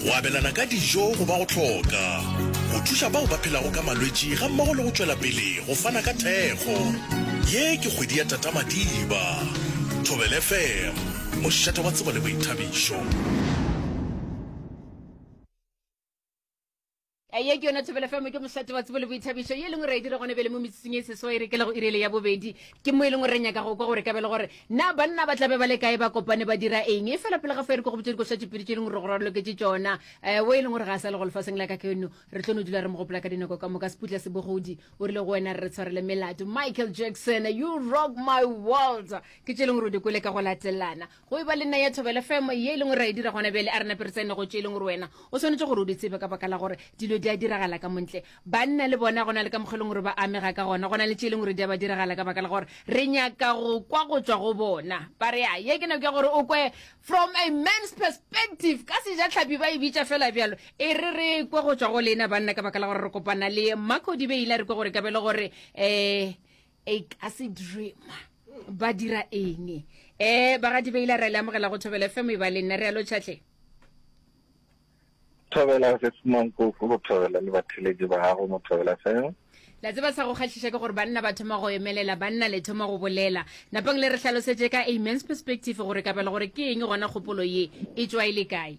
Go abelana ka dijo go ba go hloka go thuša bao ba phelago ka malwetši gammogo le go tšwela pele go fana ka thekgo. Ye ke kgwedi ya Tata Madiba. Thobela FM, mošate wa tsebo le boithabišo. Ye ke yona Thobela FM, ke mohlato wa tsebo le boithabišo, ye e leng gore re e dira gone bjale mo metsotsong e seswa e re kelago iri ele ya bobedi. Ke mo e leng gore re nyaka go kwa gore ka bjale gore na banna ba tla be ba le kae, ba kopane ba dira eng. E fela pele ga fo e re ko go botša dikošwatšopedi tše e leng gore go raloketše tšona. Eh, wo e leng gore ga a sa le go lefaseng la ka keno, re tlo no dula re mo gopola ka dinako ka moka. Seputla se bogodi o rile go wena re tshwarele melato. Michael Jackson, You Rock My World, ke tše e leng gore o di kwele ka go latelana. Go e ba le naya thobela femo ye e leng gore ra e dira gona bjale, a re nape re tsene go tše e leng gore wena o swanetše gore o di tsebe ka baka la gore dilo di a diragala ka montle. Banna le bona go na le ka mokgwa e leng gore ba amega ka gona, go na le tše e leng gore di a ba diragala ka baka la gore re nyaka go kwa go tšwa go bona. Ba re, Ya, ye ke nako ya gore o kwe from a man's perspective, ka Sejatlhapi ba e bitša feela bjalo. E re re kwe go tšwa go lena banna ka baka la gore re kopana le Marco Dibeila, re kwe gore e ka ba e le gore um e ka se dreama ba dira eng um eh, ba ga dibeile re le amogela go thobela fm e ba le nna re alo tšhatlhe thobela se semang koko go thobela le batheledi ba gago mo thobela fm la tseba sa go kgatlhiša ke gore banna ba thoma go emelela banna le thoma go bolela napang le re tlhalosetše ka amens perspective gore kabelo gore ke eng gona kgopolo ye e tswa e le kae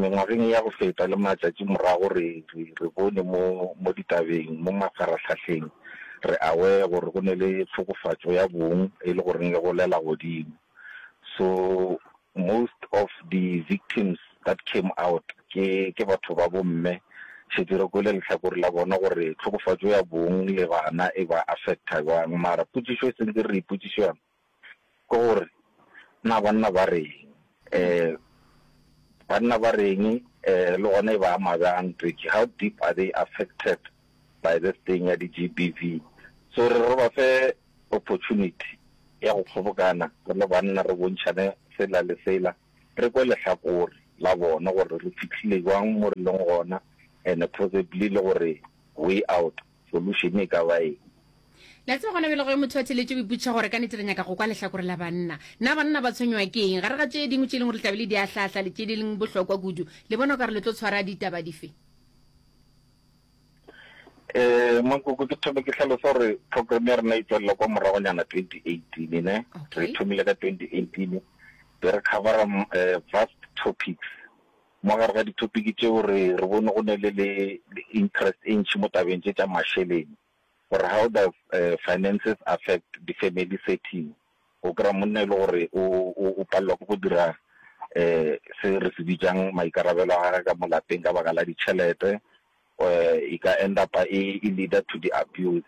Mengwageng ya go feta le matšatši morago re re bone mo mo ditabeng, mo mafarahlahleng, re aware gore go ne le tlhokofatšo ya bong e le goreng le golela godimo. So most of the victims that came out ke ke batho ba bo mme. Šetše re kwele lehlakore la bona gore tlhokofatšo ya bong le bana e ba affecta bjang mara potšišo e sentse re ipotšiša yona ke gore na banna ba reng, banna ba reng le gona e ba ama byang Twitši, how deep are they affected by this thing ya di GBV. So re re re ba fe opportunity ya go kgobokana re le banna re bontšhane sela le sela, re kwe lehlakore la bona gore re fihlile byang mo re leng gona and possibly le gore way out solution e ka ba eng? La tseba gona bjale ge motho a theletše o ipotšiša gore ka nete re nyaka go kwa lehlakore la banna. Na banna ba tshwenywa ke eng? Gare ga tše dingwe tše e leng gore le tlabe le di ahlahla le tše di leng bohlokwa kudu, le bona o ka re le tlo tshwara ditaba dife? Eh, Mankoko, ke thome ke hlalosa gore program ya rena e tswelela kwa moragonyana 2018 ne okay. re thomile ka 2018 be re covera uh, vast topics Mo gare ga ditopiki tšeo re re bone go ne le le interest e ntši mo tabeng tše tša mašeleng gore how does finances affect the family setting. O kry-a monna e le gore o o o palelwa ke go dira se re se bitsang maikarabelo a gage ka mo lapeng ka baka la ditšhelete, e ka end up e leader to the abuse.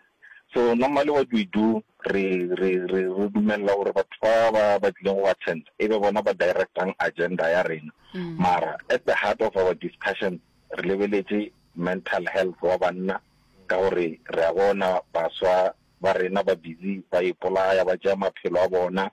So normally what we do re re re re dumella gore batho ba ba ba tlileng go attend e be bona ba directang agenda ya rena mm. mara at the heart of our discussion re lebeletse mental health wa banna ka gore re a bona baswa ba rena ba busy ba ipolaya ba tšea maphelo a bona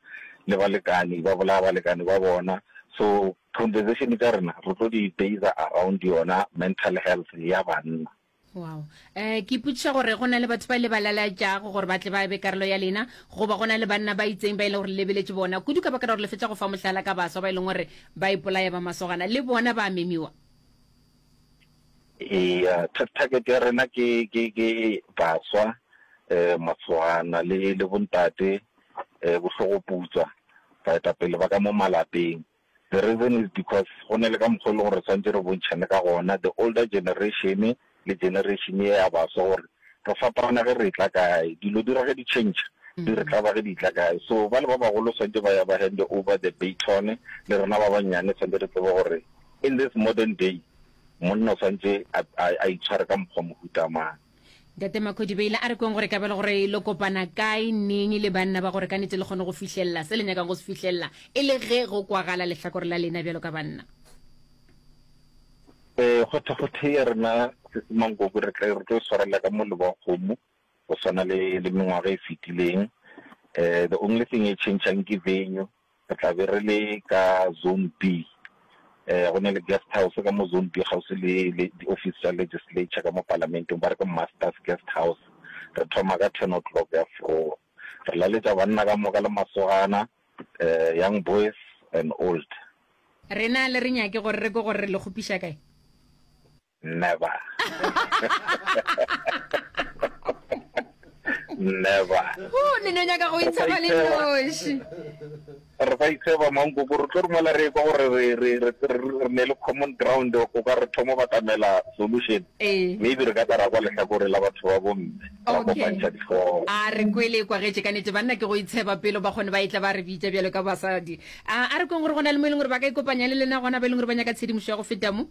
le balekane ba bolaya balekane ba bona so conversation tša rena re tlo di baser around yona mental health ya banna. Wow. Eh, ke ipotšiša gore go na le batho ba le ba lalatšago gore ba tle ba be karolo ya lena goba go na le banna ba itseng ba e leng gore lebeletše bona kudu ka baka la gore le fetša go fa mohlala ka baswa ba e leng gore ba ipolaya ba masogana le bona ba memiwa Eya target ya rena ke ke ke baswa masogana le le bontate bohlogo putswa baetapele ba ka mo malapeng. The reason is because go ne le ka mokgwa e le gore re swantse re bontšhane ka gona the older generation le generation e ya baswa gore re fapana ge re etla kae dilo di ra ge di change di re tlaba ge di tla kae so bale ba bagolo swantse ba ya ba hand over the baton le rena ba bannyane swantse re tsebe gore In this modern day, monna o swantse a, a, a itshware ka mokgwa mohuta mang? Ntate Makhodibeile a re kweng gore kabelo gore lo kopana kae neng le banna ba gore ka nete le kgone go fihlelela se le nyakang go se fihlelela e le ge go kwagala lehlakore la lena bjalo ka banna. Eh, kgothe kgothe ya rena Sesemanggobe re tla re tlo e swarela ka molebo wa kgomo go swana le le mengwaga e fetileng. Eh, the only thing e changeang ke venue. Re tla be re le ka Zone B. Go ne le guest house ka mo Zone B kgauswi le di-office tša legislature ka mo palamenteng, ba re ke Masters Guest House. Re thoma ka ten o'clock ya forowa. Re laletša banna ka moka le masogana, young boys and old. Rena le re nyake gore re kwe gore re le kgopiša kae? Never. Never. o ne no nyaka go itshaba le noši re sa itsheba mankoko re tlo romela re kwa gore re- re- re- re- re ne le common ground o ka re thomo batamela solution ee maybe re ka tla ra kwa lehlakore la batho ba bomme ra Okay. kopantšha dihloogo a re kwele kwa getse ka nete banna ke go itsheba pelo ba kgone ba etla ba re bitša bjalo ka basadi a a re kweng gore go na le mo e leng gore ba ka ikopanya le lena gona ba e leng gore ba nyaka tshedimošo ya go feta mo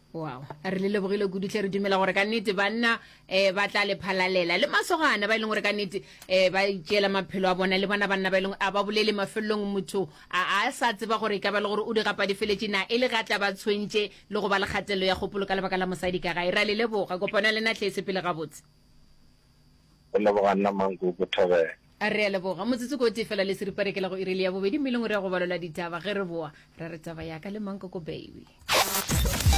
wow re le lebogile kudu tle re dumela gore ka nnete banna um ba tla le phalalela le masogana ba e leng gore ka nnete um ba itšeela maphelo a bona le bona banna ba e leng a ba bolele mafelelong motho a a sa tseba gore e ka ba le gore o di gapa di feletše na e le ga tla ba tshwentše le go ba le kgatelelo ya kgopolo ka lebaka la mosadi ka gae ra le leboga kopano ya lena tlhese pele gabotse go leboga nna manko go thobela re a leboga motsotso ko tee fela le seripare ke la go irele ya bobedi mme e leng gore ya go balola ditaba ge re boa ra re taba yaka le mankoko baby